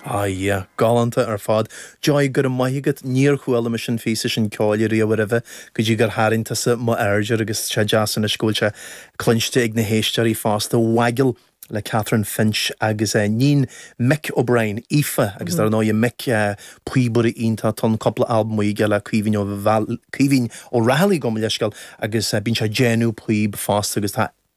Ah yeah. Galánta ar fad. Joy, go raibh maith agat. Níor chuala mise an píosa sin ceoil riamh aroimhe go dtí gur tharraing tusa mo aird air agus is deas anois go bhfuil sé cluinste ag na héisteoirí fosta. Waggle le Catrin Finch agus eh iníon Mick O'Brien, Aoife agus dar ndóigh Mick, píobaire iontach. Tá cúpla albam aige le Caoimhín Ó Caoimhín Ó Raghallaigh, gabh mo leithscéal, agus bíonn sé ag déanamh píob fosta agus tá.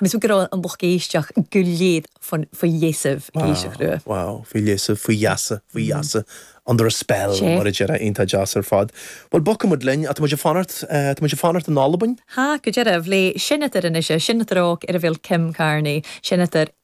Agus bhí go raibh an lucht éisteach go léir faoi gheasaibh, géiseach rua. Wow, wow, faoi gheasaibh, faoi gheasa, faoi gheasa, under a spell mar a déarfá, iontach deas ar fad. Bhuel, bogfaidh muid linn, tá muid ag fanacht, tá muid ag fanacht in Albain. Tá, go dearbh, le seinneadair anois, seinneadair óg air a bheil Kim Carnie, seinneadair.